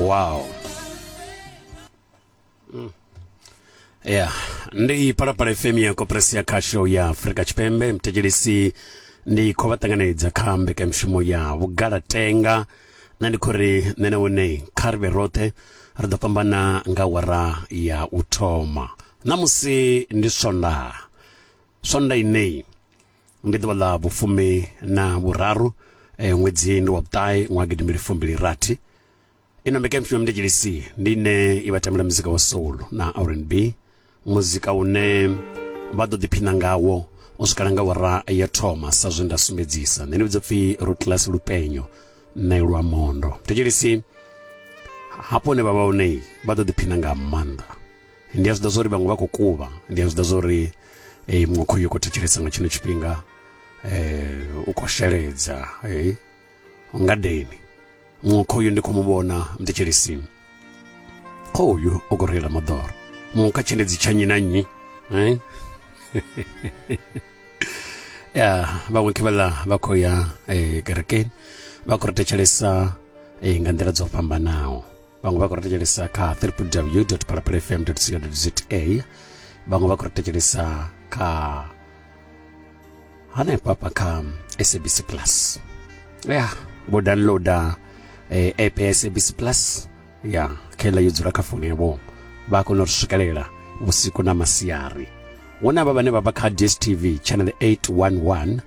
wow yeah ndi palapala fm ya koperasi ya khasho ya afurika tshipembe mthetshelesi ndi khou vha ṱanganedza kha mbekanyamushumo ya vhugalatenga na ndi khou ri nṋe na wone kha ri vhe roṱhe ri ḓo fhambana nga wara ya u thoma ṋamusi ndi swondaha swonda ineyi ndi ḓuvha ḽa vhufumi na vhuraru eh, ṅwedzi ndi wa vhuṱahe ṅwaha gidimbili fumbili rathi ino mbeka mpfima mndetshilisi ndi ine i vha tambela muzika wa soul na rnb muzika une vha ḓo ḓiphina ngawo u swikala nga wara ya thoma sa zwe nda sumbedzisa nṋe ndi vhidza pfhi rutlas lupenyo nṋe lwa mondo mndetshilisi hafho hune vha vha hone vha ḓo ḓiphina nga maanḓa ndi a zwi ḓa zwa uri vhaṅwe vha khou kuvha ndi a zwi ḓa zwa uri eh, muṅwe khoyu khou thetshelesa nga tshino tshifhinga um u khou sheledza eh, ngadeni muṅwe khoyu ndi khou mu vhona mthetshelisini khoyu u khou reila moḓoro muṅwe kha tshendedzi tsha nyi na nyi eh? ya vhaṅwe khe vhaḽa vha khou ya um kerekeni vha khou ri thetshelesa um nga nḓila dzo fhambanaho vhaṅwe vha khou ri thetshelesa kha www phalaphala fm co za vhaṅwe vha khou ri thetshelesa kha hanefha pa kha sabc plus ya vho downloada eh, app ya sabc plus ya khela yo dzula kha foni yavho vha kona u ri swikelela vhusiku na masiari hu na vha vhane vha vha kha dstv channel 811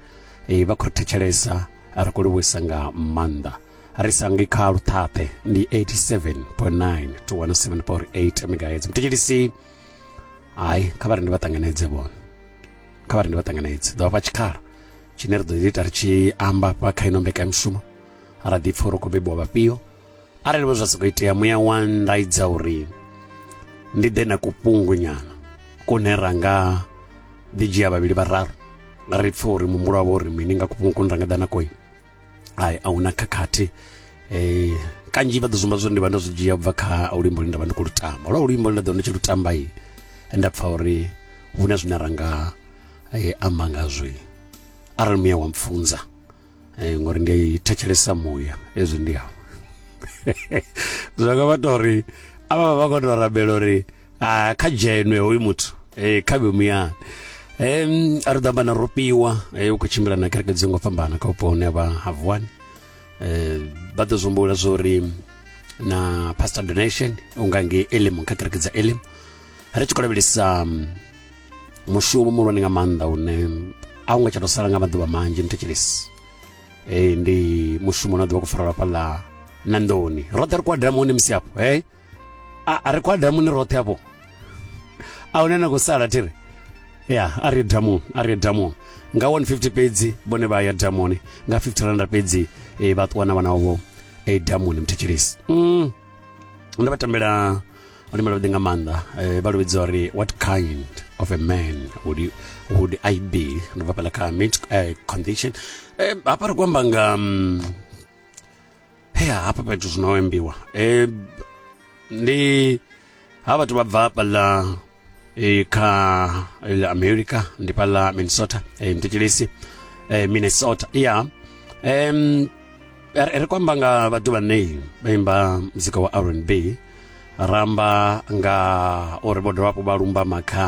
eh, vha khou ri thetshelesa ri khou livhuisa nga maanḓa ri sa ngi kha luṱhaṱhe ndi 87.9 to 107.8 megahertz muthetshelisi hayi kha vha ri ndi vha ṱanganedze vhone kha vha ri ndi vha ṱanganedze ḓo vhafha tshikhala tshine ri ḓo ḓi ita ri tshi amba fha kha ino mbekanyamushumo ra ḓi pfa uri khou bebiwa vhafhio arali vho zwa sokou itea muya wa ndaidza uri ndi ḓe na kufhungunyana kune ra nga ḓi dzhia vhavhili vhararu ri pfa uri muhumbulo wavho uri mini nga kufhungu kune ra nga ḓa na koyi ai a huna khakhathi eh kanzhi vha ḓo zumba zwo ndi vha ndo zwi dzhia bva kha luimbo lune nda vha ndi khou lu tamba lwa luimbo lune nda ḓo ndi tshi lu tamba i nda pfha uri hu na zwine ra nga eh, amba ngazwi arali muya wa mpfunza eh, ngori ndi thetshelesa muya ezwi ndi awo zwa nga vha tori avha vha vha khou tou rabela uri a kha dzhenwe hoyu muthu eh kha vhe muyani em a ri ḓamba na ropiwa eh u khou tshimbila na kereke dzi ngo fhambana kha vhupo hune vha ha vuwani eh vha ḓo zwombula zwori na pastor donation unga nge elim kha kereke dza elim ri tshi khou lavhelesa mm, mushumo muhulwane nga maanḓa une a u nga tsha tou sala nga maḓuvha manzhi ni thetshelesi eh ndi mushumo na ḓuvha ku farelwa fhaḽa na nḓoni roṱhe ri kuadela muone musi afho eh a ri kwa damuni roṱhe afho a hune na khou sala thiri ya a ri damuni a ri damuni nga 150 fhedzi vhone vha ya damuni nga 50 randa fhedzi e, vha ṱuwa na vhana vho e, eh, damuni muthetshelisi mm. ndo vha tambela luimbo lwavhuḓi nga maanḓa eh, vha luvhidza uri what kind of a man would, you, would i be ndo bva pela kha mid uh, condition eh, hafha ri ku amba nga um, he hafha fhethu zwino ho embiwa e, ndi ha vhathu vha bva fhaḽa e, kha ḽa america ndi fhaḽa minnesota e, mthetshelesi e, minnesota ya em, ri ri kwamba nga vhathu vhane vha imba muzika wa rnb ramba nga uri vho dovha hafhu vha lumba makha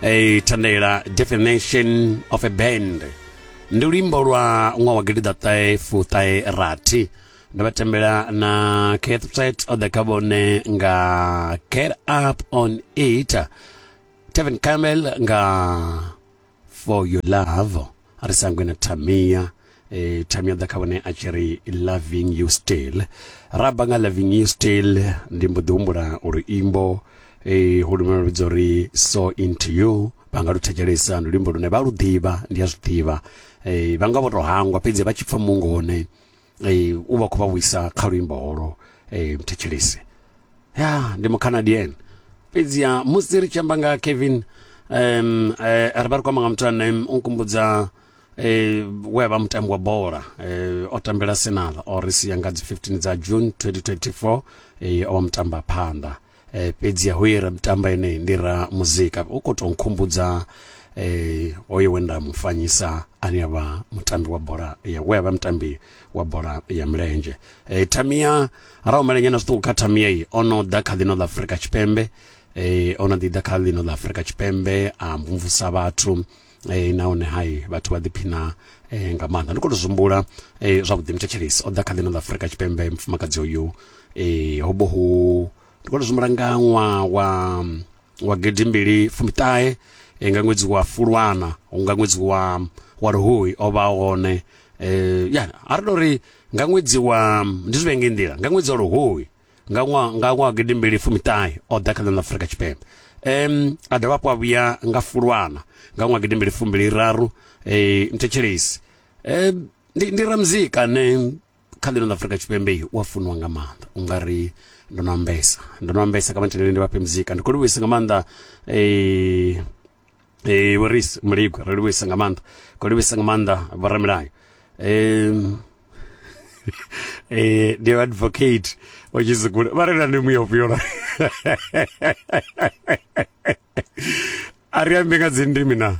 Hey, thandela definition of a band ndi luimbo lwa ṅwaha wa gidiḓaṱahe fuṱahe rathi ndo vha tembela na cath threat o ḓa kha vhone nga get up on it tevin camel nga for your love a ri sangwe na tamia eh, tamia ḓa kha vhone a tshi ri loving you still ra bva nga loving you still ndi mbo ḓi humbula uri imbo eh, ho lumela ludzo ri so into you vha nga lu thetshelesa ndi luimbo lune vha lu ḓivha ndi a zwi ḓivha eh, vha nga vho to hangwa fhedzi vha tshi pfa mungo hone e, u vha khou vha vhuisa kha luimbo holo e, mthetshelesi ya ndi mucanadian fhedziha musi ri tshi amba nga kevin um, e, ri vha ri khou amba nga muthu ane u nkumbudza eh we vha mutambi wa bola eh o tambela Arsenal o ri sia nga dzi 15 dza June 2024 eh o vha mutamba phanḓa eh, fhedzi ho ye ra mutamba ene ndi ra muzika u khou tou nkhumbudza eh, hoyo we nda mufanyisa ane a vha mutambi wa bola ya we a vha mutambi wa bola ya milenzhe eh, tamia ra umelenya na zwiṱuku kha tamia iyi o no ḓa kha ḽino ḽa afurika tshipembe eh, o no ḓi ḓa kha ḽino ḽa afurika tshipembe a mvumvusa vhathu e, nahone hai vhathu vha ḓiphina e, nga maanḓa ndi khou tou zwimbula e, zwavhuḓi muthetshelesi o ḓa kha ḽino ḽa afurika tshipembe mufumakadzi uyu e, ho vho hu ndi khou tou zwimbula nga ṅwaha wa wa gidimbili fumiṱahe e, nga ṅwedzi wa fulwana nga ṅwedzi wa wa luhuhi o vha hone e, ya a ri tou ri nga ṅwedzi wa ndi zwivhenge nḓila nga ṅwedzi wa luhuhi nga ṅwaha nga ṅwaha gidi mbili fumiṱahe o ḓa kha ḽa Afrika Tshipembe um a dovha hafhu a vhuya nga fulwana nga ṅwaha gidi mbili fumbili raru eh, mthetshelesi um ndi, ndi ramuzika ane kha ḽino ḽa Afrika Tshipembe u a funiwa nga maanḓa u nga ri ndo no ambesa ndo no ambesa kha matheneleni ndi vhafhe muzika ndi khou livhuisa nga maanḓa um e, vho ris muligwe ri livhuisa nga maanḓa ko livhuisa nga maanḓa vhoramilayo um eh ndi advocate o tshizikule vha rela ndi muya ufhio la a ri ambe nga dzindimi na